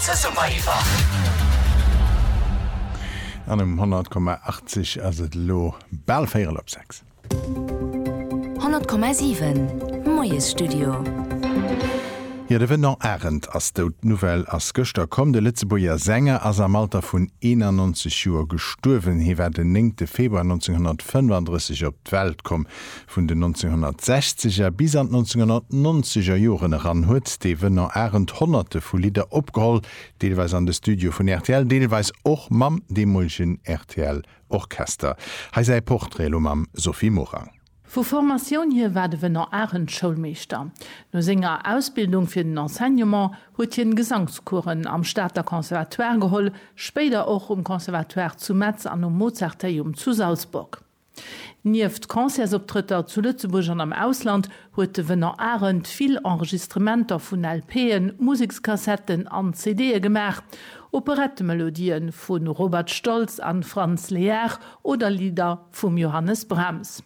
Zesumme iwwer. An um 100,80 ass et elo bal véierel op sechs. 100,7, Moiesstudio. Jo, de Venant Arendt ass dout. D'Nouvelle ass gëschter komm. De Lëtzebuerger Sänger ass am Alter vun 91 Joer gestuerwen. Hie war den néngte Februar 1935 op d'Welt komm. Vun den 1960 er bis an d'1990 er Joren eran huet de Venant Arendt honnerte vu Lidder opgeholl, deelweis an de Studioe vun rtl, deelweis och mam deemolegen rtl Orchester. Hei säi Portrait elo mam Sophie Morang. Vu Formatioun hir war de Venant Arendt Schoulmeeschter. No senger Ausbildung fir den Enseignement huet hien Gesangscoursen am Stater Conservatoire geholl, spéider och um Conservatoire zu Metz an um Mozarteium zu Salzburg. Nieft Concertsoptrëtter zu Lëtzebuerg an am Ausland huet de Venant Arendt vill Enregistrementer vun LPen, Musekskassetten an CDe gemaach. Operettemelodië vu Robert Stolz a Franz Lehár oder Lidder vum Johannes Brahms.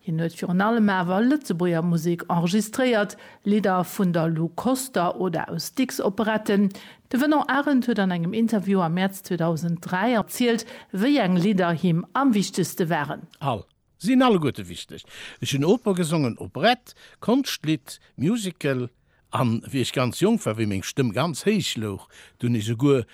Hien huet virun allem awer Lëtzebuerger Musek enregistréiert, Lidder vun der Lou Koster oder aus Dicks Operetten, De Venant Arendt huet an engem Interview am Mäerz 2003 erzielt, wéi eng Lidder him am wichtegste waren. All. Sinn alleguerte wichteg. Ech hunn Oper gesongen, Operette, Konschtlidd, Musical, an wéi ech ganz jonk war, wéi meng Stëmm ganz héich louch, do hunn ech souguer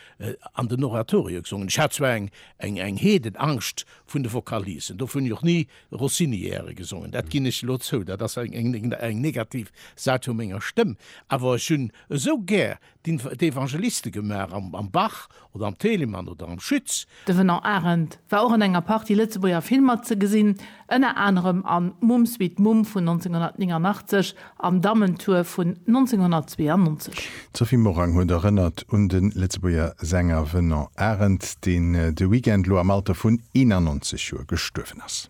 an den Oratorio gesongen. Ech hat zwar eng eng Heedenangscht vun de Vocalisen, dofir hunn ech och ni Rossiniäre gesongen, dat ginn ech elo zou, dat ass eng eng negativ Säit vu menger Stëmm, awer ech hunn esou gär d'Evangeliste gemaach am Bach oder am Telemann oder am Schütz. De Venant Arendt war och an enger Partie Lëtzebuerger Filmer ze gesinn, ënner anerem an Mumm sweet Mumm vun 1989 an Dammentour vun 1992. D'Sophie Morang huet erënnert un de Lëtzebuerger Sänger Venant Arendt, deen de Weekend elo am Alter vun 91 Joer gestuerwen ass.